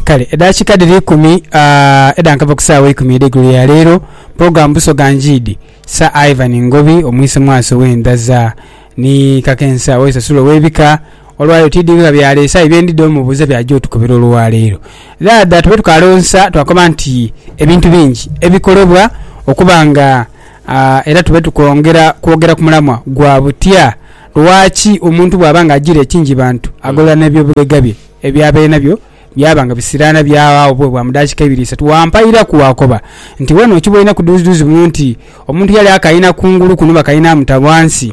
Kale edakika dhiri ikumi uh, edhankava ku saawa eikumi edheigulo ya leero, pulogulaamu Busoga Njiidi, Sir Ivan Ngobi omwise mwaso w'endhaza ni kakensa w'esasulo w'ebika olwaleero tidhi nga byaleese aye bye ndidha omubuuza by'aja otukubira olwaleero. Dhaadha tube tukalonsa twakoba nti ebintu bingi ebikolebwa okuba nga uh, era tube tukwongera kwogera ku mulamwa gwa butya Lwaki omuntu bw'aba nga ajiira ekingi bantu, agolola n'eby'obulega bye eby'aba enabyo byaba nga bisiraana by'aghaawo bube bwa mu daakika ibiri isatu? Wampairaku waakoba nti, Wena okiboineku duuzidhuuzi muno nti omuntu yali akaina kungulu kuno bakaina amuta ghansi.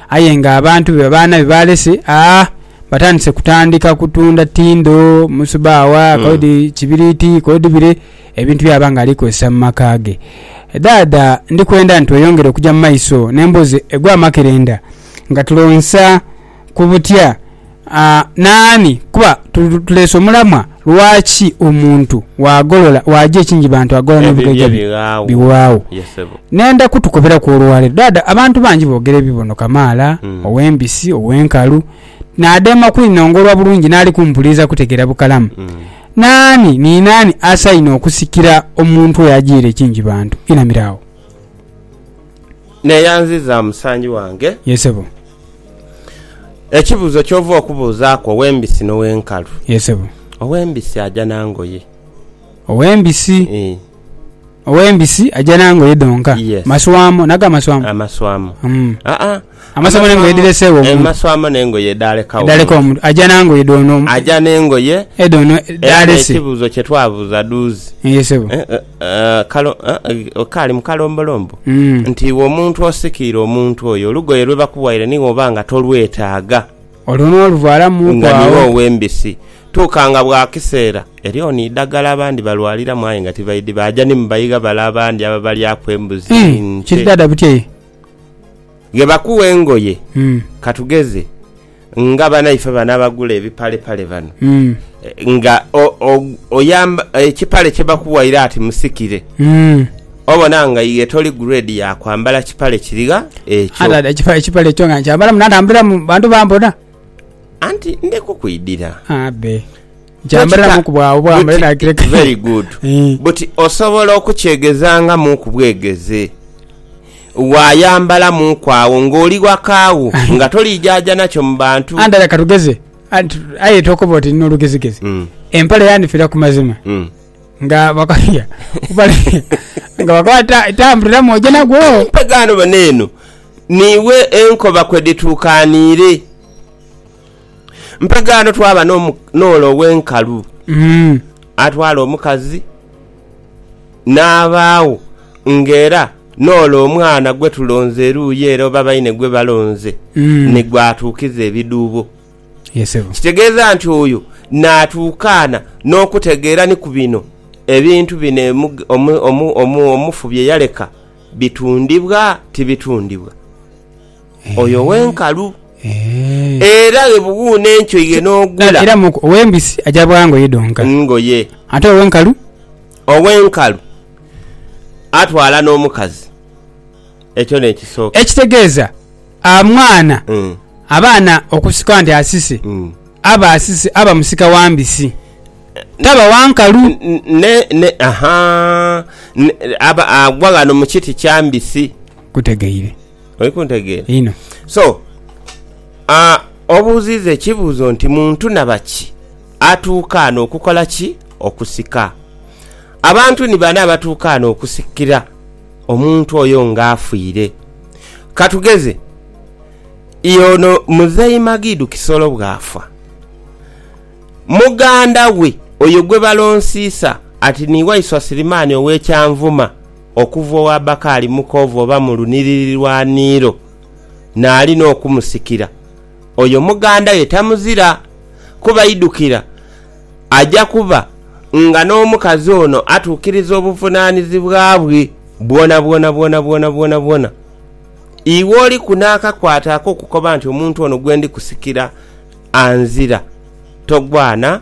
Aye nga abantu be babaana be baalese a batandise kutandika kutunda tindo, musubawa, kodi kibiriiti, kodi bire. Ebintu by'aba nga ali kozesa mu maka ge. Dhaadha ndi kwenda ntweyongere okuja mu maiso n'embozi egw'amakerenda nga tulonsa ku butya n'ani kuba tuleese omulamwa lwaki omuntu bw'agolola bw'aja ekingi bantu agolola n'ebigoja bye biwaagho. Nenda kutukoberaku olwaleero. Dhaadha abantu bangi boogera ebibono kamaala, ow'embisi, ow'enkalu. Naadema kwinongolwa bulungi n'ali kumpuliriza kutegeera bukalamu. Naani ni naani asaine okusikira omuntu oyo ajiire kingi bantu? Inamira agho. Neeyanziza musangi wange. Ye sebo. Ekibuuzo ky'ova okubuuzaaku ow'embisi n'ow'enkalu. Ye sebo. Ow'embisi aja na ngoye. Ow'embisi? Ii. Ow'embisi aja na ngoye dhonka? Yes. Maswamo? Nago amaswamo? Amaswamo. Umm. Aa. Amasomo n'engoye edhireseegho omuntu. Amasomo n'engoye edhaleka omuntu. Edhaleka omuntu. Aja na ngoye dhoono. Aja n'engoye. Edhoono dh'alese. Era n'ekibuuzo kye twabuuza dhuuzi. Ye sebo. Kaali mu kalombolombo. Nti iwe omuntu osikiire omuntu oyo, olugoye lwe bakuwaire ni woba nga tolwetaaga. Olwo n'oluvaalamuuku agho. Nga niwe ow'embisi. Tuuka nga bwa kiseera, eriyo ni idhaggala abandi balwaliramu aye nga tibaidhi, baaja ni mu baigha bale abandi ababalyaku embuzi, nte. Kiri dhaadha butyai? Ghe bakuwa engoye, ka tugeze nga banaife bano abagula ebipalepale bano nga oyamba ekipale kye bakuwaire ati musikire obona nga iwe toli grade ya kwambala kipale kirigha ekyo. Ate ekipale ekipale ekyo nga nkyambala munantambuliramu bantu bambona. Anti ndikukwidira. Abe. Kyambaliramu ku bwagho bwa male nakireka. Very good. Buti osobola okukyegezangamu ku bwegeze. Waayambalamu ku agho ng'oli ghaka gho nga toliijaja nakyo mu bantu. Ante leka tugeze, aye tokoba oti nina olugezigezi. Hmm. Empale yanifira ku mazima. Hmm. Nga bakafia. Nga bakaba tambuliramu oje nagwo. Empegano bano eno. Niiwe enkoba kwe dhituukaniire. Mpegaano twaba n'ole ow'enkalu atwala omukazi n'abaagho ng'era n'ole omwana gwe tulonze eruuyi ere oba baine gwe balonze ni gw'atuukiza ebidhuubo. Kitegeeza nti oyo naatuukaana n'okutegeera ni ku bino ebintu bino omufu bye yaleka bitundibwa tibitundibwa. Oyo ow'enkalu era ghe bughuune enkyo ye n'ogula. Era mu ow'embisi aja bwa ngoye dhonka. Ngoye. Ate ow'enkalu. Ow'enkalu atwala n'omukazi. Ekyo n'ekisooka. Ekitegeeza amwana abaana okusika nti asise, aba asise, aba musika wa mbisi, taba wa nkalu. Ne, ne, aha, ne, aba agwa ghano mu kiti kya mbisi. Kutegeire. Oli kuntegeera? Inho. So, uh, obuuziiza ekibuuzo nti muntu nabaki atuuka ano okukola ki? Okusika. Abantu ni bani abatuuka ano okusikira omuntu oyo nga afiire? Katugeze, yono Muzei Magidu Kisolo bw'afa, muganda we oyo gwe balonsiisa ati ni Waiswa Sirimaani ow'e Kyanvuma, okuva ow'abaka ali mukoovu oba mu lunhiriri lwa niiro, naali n'okumusikira, oyo muganda we tamuzira, kuba idhukira, aja kuba nga n'omukazi ono atuukiriza obuvunaanizibwa bwe bwonabwona bwonabwona bwonabwona. Iwe oliku n'akakwate ak'okukoba nti, Omuntu ono gwe ndi kusikira anzira. Togwana.